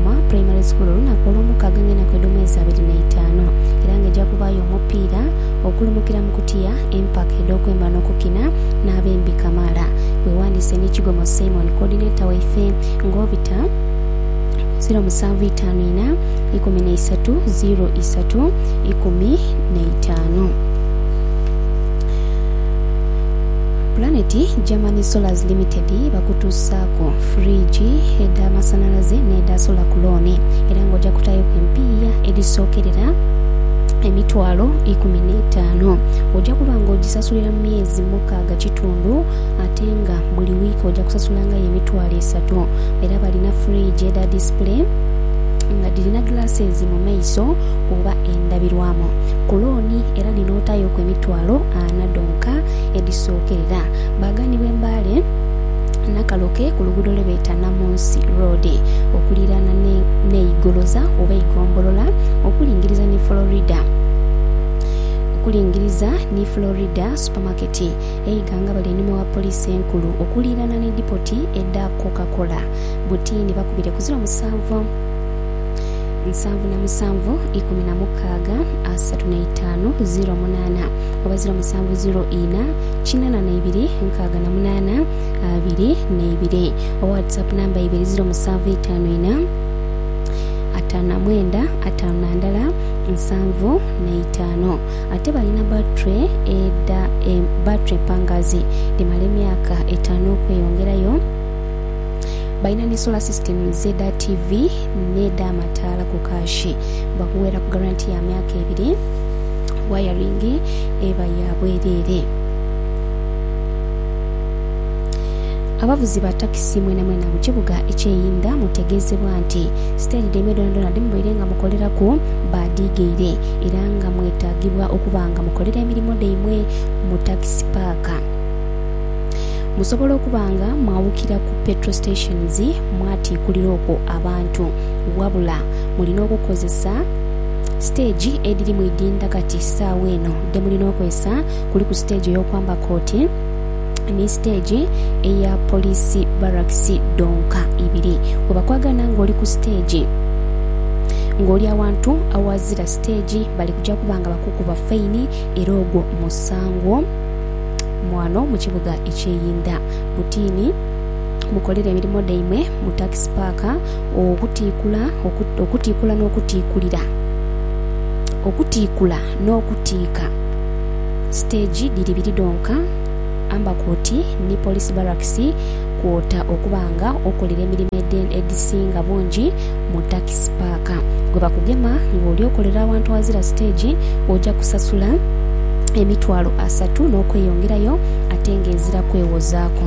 Kigoma Primary School olunaku olwomukaaga nga enaku edhomwezi abiri naitaanu era nga eja kubaayo omupiira okulumukira mu kutiya empaka edhokwemba nokukina n'abembi kamaala. Wewandiise ni Kigomo Simon coordinator waife nga obita ku ziro musanvu itaanu ina ikumi naisatu ziro isatu ikumi naitaanu. Planet Germany Solars Limited bakutuusaaku. fridge, edh'amasanhalaze n'edha sola ku looni era nga oja kutaayoku empiiya edhisookerera emitwalo ikumi n'etaanu. Oja kuba nga ogisasulira mu myezi mukaaga kitundu ate nga buli wiiki oja kusasulangayo emitwalo esatu. Era balina fridge edha disipule nga dhirina glasses mu maiso oba endabirwamu ku looni era dhino otaayoku emitwalo ana dhonka edhisookerera. Baaganibwa e Mbale. Nakaloke ku luguudo lwe beeta Namunsi Road okuliiraana n'e Igoloza oba Igombolola okulingiriza ni Florida okulingiriza ni Florida Supermarket eighangabala einhuma wa Poliisi Enkulu okuliiraana ni dipoti edha Coca Cola butiini bakubire ku ziro musanvu nsanvu na musanvu ikumi na mukaaga asatu na itaanu ziro munaana oba ziro musanvu ziro ina kinana na ibiri nkaaga na munaana abiri na ibiri owa whatsapp namba ibiri ziro musanvu itaanu ina ataanu na mwenda ataanu na ndala nsanvu na itaanu ate balina battery eda e, battery empangazi dhimala emyaka etaanu okweyongerayo balina ne solar system z'eda tv n'edha amataala ku kaashi bakuweeraku garanti ya myaka ebiri wayaringi eba ya bwereere. Abavuzi ba takisi mwenamwena mu kibuga eky'eInda mutegeezebwa nti siteegi dhaimwe dhoonadhoona dhe mubaire nga mukoleraku baadhiigaire era nga mwetaagibwa okuba nga mukolera emirimo dhaimwe mu takisi paaka musobola okuba nga mwawukira ku petrol stations mwatiikulira okwo abantu wabula mulina okukozesa Siteegi edhiri mu idhindha kati saagha eno dhe mulina okozesa kuliku siteegi ey'okwamba kooti ni siteegi eya poliisi barakisi dhonka ibiri. Bwebakwagana ng'oli ku siteegi ng'oli awantu aghazira siteegi bali kuja kuba nga bakukuba faini era ogwo musango ghano mu kibuga eky'e Inda. Butiini mukolere emirimo dhaimwe mu takisi paaka. Okutiikula, okutiikula n'okutiikulira. Okutiikula n'okutiika siteegi dhiri biri dhonka, amba koti ni Police Barracks kwota okuba nga okolera emirimo edhisinga bungi mu takisi paaka. Bwe bakugema ng'oli okolera awantu aghazira siteegi, oja kusasula emitwalo asatu n'okweyongerayo ate ng'ezira kwewozaaku.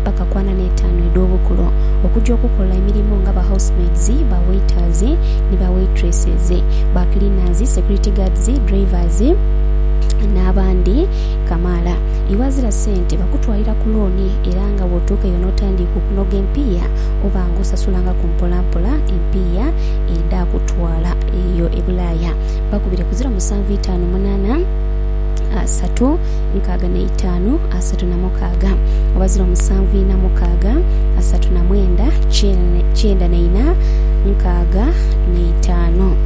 mpaka ku ana n'etaanu edh'obukulu, okuja okukola emirimo nga ba housemaids, ba waiters ni ba waitresses, ba cleaners, security guards, drivers n'abandi kamaala. Iwe azira sente bakutwalira ku looni era nga bw'otuuka eyo n'otandiika okunoga empiiya oba nga osasulangaku mpolampola empiiya edhakutwala eyo e Bulaaya. Bakubire ku ziro musanvu itaanu munaana satu. nkaaga na itaanu asatu na mukaaga abazira omusanvu ina mukaaga asatu na mwenda kyenda na ina nkaaga na itaanu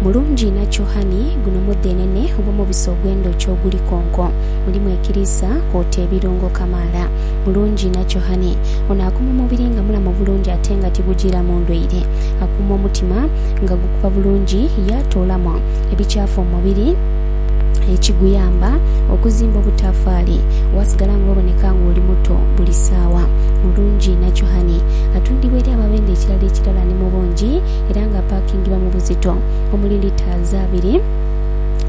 mulungi ina kyohani guno mudhenene oba omubisi ogw'endhoki oguli konko mulimu ekiriisa kwota ebirungo kamaala mulungi ina kyohani ono akuuma omubiri nga mulamu bulungi ate nga tigujiiramu ndwaire akuuma omutima nga gukuba bulungi yaatoolamu ebikyafu omubiri ekiguyamba okuzimba obutafaali wasigala nga oboneka nga oli muto buli saawa. Mulungi Nakyuhani atundibwa eri ababenda ekirala ekirala ni mu bungi era nga apaakingibwa mu buzito omuli litres abiri,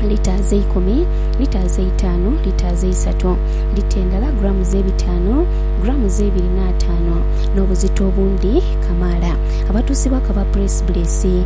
litres eikumi, litres eitaanu, litres eisatu, lita endala grams ebitaanu, grams eibiri n'ataanu n'obuzito obundi kamaala. Abatuusibwaku aba Puleesibuleesi.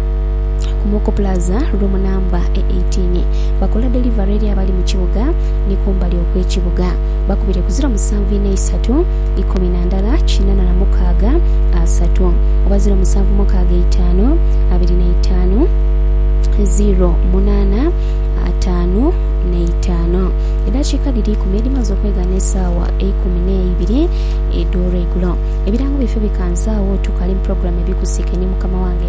ku Moko Plaza, Room Number e eighteen. Bakola delivery eri abali mu kibuga ni kumbali okw'ekibuga. Bakubire ku ziro musanvu inha isatu ikumi na ndala kinana na mukaaga asatu oba ziro musanvu mukaaga eitaanu abiri na itaanu ziro munaana ataanu n'eitaano. Edhakiika dhiri ikumi edhimaze okweghanha esaawa eikumi n'eibiri edh'olweigulo. Ebirango byaife bikanze agho, tukali mu pulogulaamu Ebikusike ni mukama wange.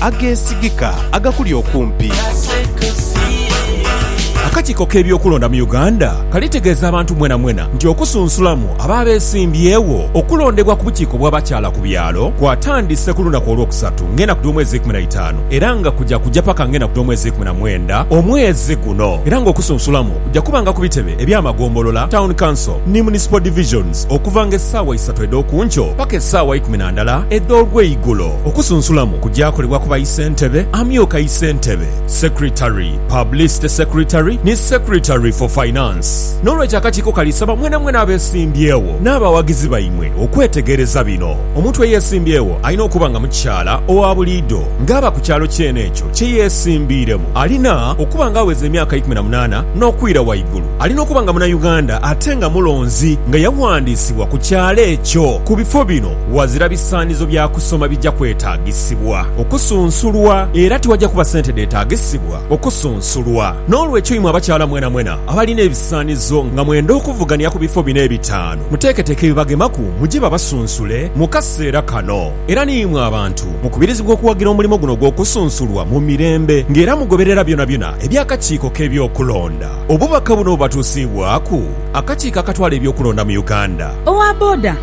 ageesigika agakuli okumpi. Akakiiko k'ebyokulonda mu Uganda kalitegeeza abantu mwenamwena nti okusunsulamu abo abeesimbyewo okulondebwa ku bukiiko bw'abakyala ku byalo kwatandise ku lunaku Olwokusatu ng'enaku dh'omwezi eikuminaitaanu era nga kuja kuja paka ng'enaku dh'omwezi eikuminamwenda omwezi guno era ng'okusunsulamu kuja kubanga ku bitebe eby'amagombolola, Town Council ni Municipal Divisions okuvanga essaawa isatu edh'okunkyo paka essaawa ikuminandala edh'olweigulo. Okusunsulamu kugyakolebwa ku baisentebe, amyuka isentebe, secretary, publicity secretary ni secretary for finance. N'olwekyo akakiiko kali saba mwenamwena abesimbyewo n'abawagizi baimwe okwetegereza bino. Omuntu eyesimbyewo alina okuba nga mukyala owa buliido ng'aba ku kyalo kyene ekyo kye yesimbiiremu. Alina okuba nga aweza emyaka ikumi na munaana n'okwira waigulu. Alina okuba nga muna Uganda ate nga mulonzi nga yawandiisibwa ku kyalo ekyo ku bifo bino. Ghazira bisaanizo bya kusoma bija kwetaagisibwa okusunsulwa, era tiwaja kuba sente dheetaagisibwa okusunsulwa. N'olwekyo imwe abakyala mwenamwena abalina ebisaanizo nga mwenda okuvugania ku bifo bino ebitaanu, muteeketeeke ebibagemaku muje babasunsule mu kaseera kano. Era ni imwe abantu mukubirizibwa okuwagira omulimo guno ogw'okusunsulwa mu mirembe nga era mugoberera byonabyona eby'akakiiko k'ebyokulonda. Obubaka buno bubatuusiibwaku akakiiko akatwala eby'okulonda mu Uganda. Owa boda